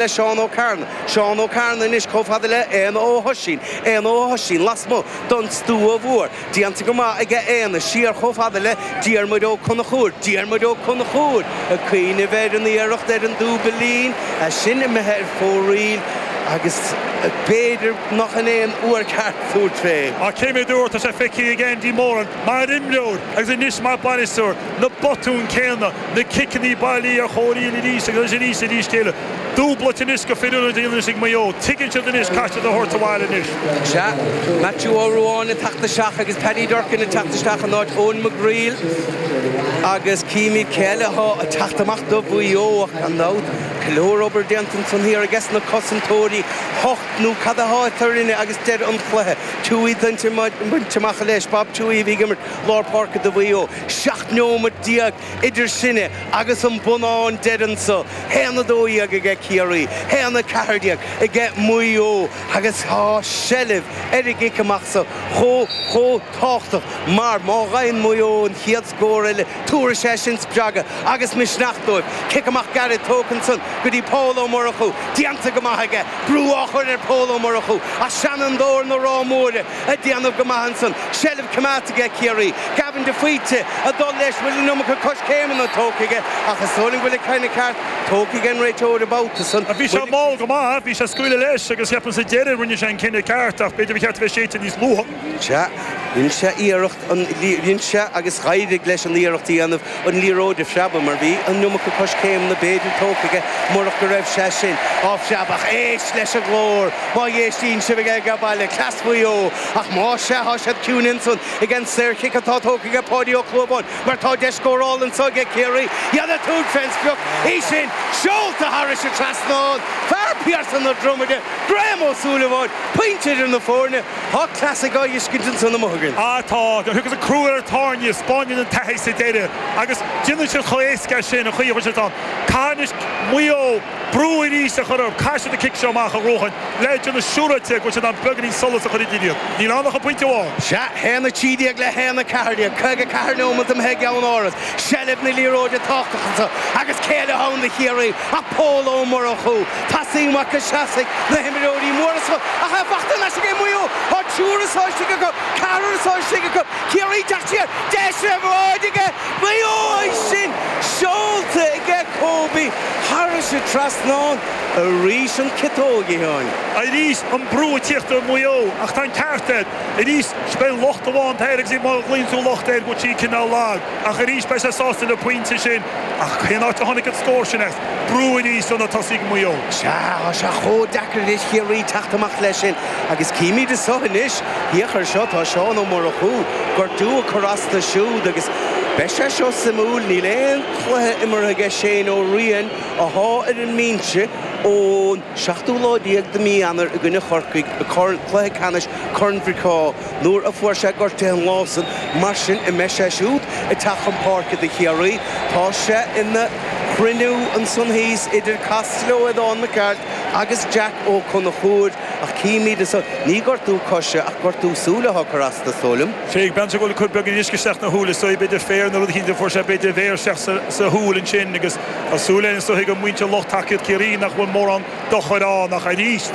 le Seán Ó Cearnaigh, Seán Ó Cearnaigh anois chomh fada le Éanna Ó hOisín, Éanna Ó hOisín lasmuigh don stua mhór, déanta go maith aige Éanna, siar chomh fada le Diarmuid Ó Conchúir, Diarmuid Ó Conchúir ag cuimhneamh ar an iarracht ar an dúbailín, é sin imithe ar fóraoil agus b'fhéidir nach in é an uair ceart tabhairt fé. Ach cé mhéad uair atá sé feicthe ag Andy Moran mar imreoir agus anois mar bhainisteoir, na botúin céanna, na ciceannaí bailí ar fóraoil aríst agus aríst eile. Dúbailt anois go firiúil a dhéanamh is ag Maigh Eo. Tuigeann siad anois caithfidh siad é a thabhairt abhaile anois. Sea, Maitiú Ó Ruáin ag teacht isteach agus Paddy Durcan ag teacht isteach in áit Eoin McGreal agus címid cé eile athá ag teacht amach do Mhaigh Eo ach gan dabht, go leor obair déanta ansan thiar ages na cosantóirí, hocht neomat athá eadrainne agus deireadh an chluiche, Tuohy bainte amach leis, Bob Tuohy a bhí ag imirt lár páirce do Mhaigh Eo. 17 neomat idir sinne agus an bonnán deireanach so, haon a dó dhéag aige Ciarraí, haon a ceathair déag aige Maigh Eo, agus tá seilbh ar an gcic amach so chomh, chomh tábhachtach mar má gheibheann Maigh Eo an chéad scór eile tabharfaidh sé sin spreagadh agus misneach dóibh. Cic amach gairid tógtha ansan go dtí Pól Ó Murchú, déanta go maith aige, brú á chur ar Pól Ó Murchú, seanfhondúir na Rátha Móire, ag déanamh go maith ansan, seilbh coimeádta aige Ciarraí, Gavin de Faoite ag dul leis, bhfuil an iomarca coiscéimeanna tógtha aige ach is dóigh liom go bhfuil an cinneadh ceart tógtha ag an réiteoir an babhta san, Bhí sé mall go maith, bhí sé ag scaoileadh leis agus ceapaim sa deireadh rinne sé an cinneadh ceart ach b'fhéidir ba cheart a bheith séidte níos luaithe. Sea, rinne sé iarracht. á rinne sé agus d'éirigh leis an iarracht a dhéanamh an liathróid a phreabadh mar bhí an iomarca coiscéimeanna b'fhéidir tógtha aige murach go raibh sé sin á phreabadh. Éist leis an nglór! Má éistíonn sibh aige baile, cleas Mhaigh Eo! Ach más ea, tá siad ciúin ansan ag an saorchic atá tógtha aige Páidí Ó Clúmháin mar tá deis scórála anso aige Ciarraí iad ag tabhairt fén sprioc, í sin seolta thairis an trasnán, fear Phiarsaigh na Dromoda, Graham Ó Súilleabháin, pointe idir na foirne. Tá clasaic go cinnte ansan amuigh againn. Á tá, nuair a thiocfas an crú ar an tairne, spáineann an taithí sa deireadh, agus déanfaidh siad chomh héasca sin an chaoi a bhfuil siad ann. Caithfidh anois Maigh Eo brú aríst a chur orthu. Caithfidh siad an cic seo amach a bhuachan le déanamh siúráilte go bhfuil siad in ann beagainín solais a chur idir iad. Níl ann ach an pointe amháin. Sea, haon a trí déag le haon a ceathair déag, caoga ceathair neomat imithe i gceann áras, seilbh na liathróide tábhachtach ansan, agus cé eile athá ann do Chiarraí. ach Pól Ó Murchú, Teasaí Mhac Iceasaigh, na himreoirí móra so ach é fachta ar ais aige Maigh Eo, tá triúr istigh acu, ceathrar istigh acu, Ciarraí ag teacht siar, deis ar bhráid aige Mhaigh Eo ansin, seolta aige Kobe thairis an trasnán, arís an ciotóg a Sheáin. Arís an brú ag tíocht ar Mhaigh Eo ach tá an ceart air, arís is é an locht amháin atá air agus má ghlaonn tú locht air go bhfuil siad cineál lag. Ach arís, beidh sé sásta le pointe sin. Ach cén áit a tháinig an scór sin as? Brú aníos ó na tosaithe Maigh Eo. Sea, tá sé chomh deacair anois do Chiarraí teacht amach leis sin agus címid anso anois. Féach air seo, tá Seán Ó Murchú gortú ag cur as dó siúd agus beidh sé seo suimiúil. Níl aon chluiche imeartha aige Shane Ó Riain atá ar an mbinse ón seachtú lá déag de mí Eanáir i gcoinne Chorcaigh i Corn, cluiche ceannais Corn Mhic Craw. Nuair a fuair sé gortaithe an lá san mar sin an mbeidh sé siúd ag teacht chun páirce do Chiarraí, tá sé ina chruinniú ansan thíos idir Costello Aodhán Mac Gearailt agus Jack Ó Conchúir, ach címid anso ní gortú coise ach gortú súile atá ag cur as dó, is dóigh liom. Thréig Beinteach Ó le cur beagán uisce isteach 'na shúile, is dóigh, b'fhéidir féar nó rud eicínt a fuair sé, b'fhéidir a mhéar isteach sa shúil ansin agus tá súil, is dóigh, ag muintir, lucht tacaíocht Chiarraí nach bhfuil mórán dochar ann ach arís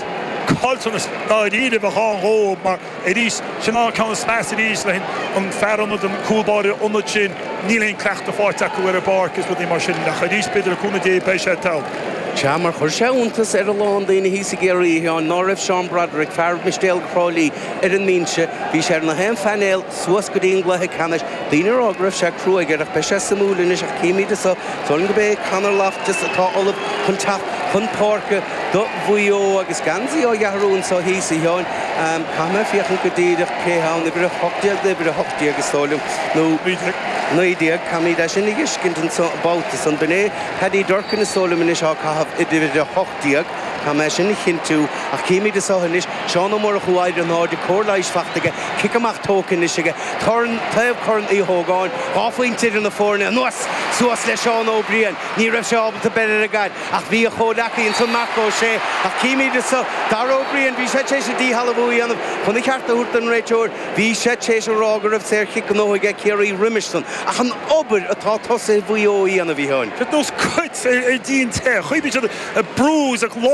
caillteanas dáiríribh a bheadh ann dóibh mar arís sin an ceann is measa arís leis an fear ionad an cúl báire ionad sin níl aon cleachtadh fáighte acu ar an bpáirc is rudaí mar sin ach arís b'fhéidir le cúnamh Dé beidh sé togha. Sea, mar chuir sé iontas ar a lán daoine thíos i gCiarraí, a Sheáin, ná raibh Seán Broderick, fear Mistéalaigh Thrá Lí, ar an mbinse. Bhí sé ar nach aon phainéal suas go dtí an gcluiche ceannais. Daoine ag rá go raibh sé cruaidh air ach beidh sé suimiúil anois ach címid anso san gurb é Conor Loftus atá ullamh chun teacht chun páirce do Mhaigh Eo agus geansaí á dh'athrú anseo thíos, a Sheáin. Caithfidh mé féachaint go díreach cé atá ann. Uimhir a hocht déag nó uimhir a hocht déag is dóigh liom nó naoi déag, naoi déag, caithfimid é sin a fheiscint an babhta san. B'in é Paddy Durcan is dóigh liom anois ag caitheamh uimhir a hocht déag. Caithfidh mé sin a chinntiú, ach címid anso anois, Seán Ó Murchú, ar ais in airde, cóir leighis fachta aige, cic amach tógtha anois aige, corn, taobh Corn Uí Ógáin, dhá phointe idir na foirne, anuas, suas le Seán Ó Briain, ní raibh sé ábalta beir ar an gcaid, ach bhí a chomhleacaí ansan, Marc Ó Sé, ach címid anso, Dara Ó Briain, bhí sé tar éis an díshealbhú a dhéanamh, chun a cheart a thabhairt don réiteoir, Bhí sé tar éis a rá go raibh saorchic gnóite aige Ciarraí roimis san, ach an obair atá tosaithe Mhaigh Eo a dhéanamh, bhí an. It knows cuts ar díon te. Chuimhnigh siad a bruise, a gclár.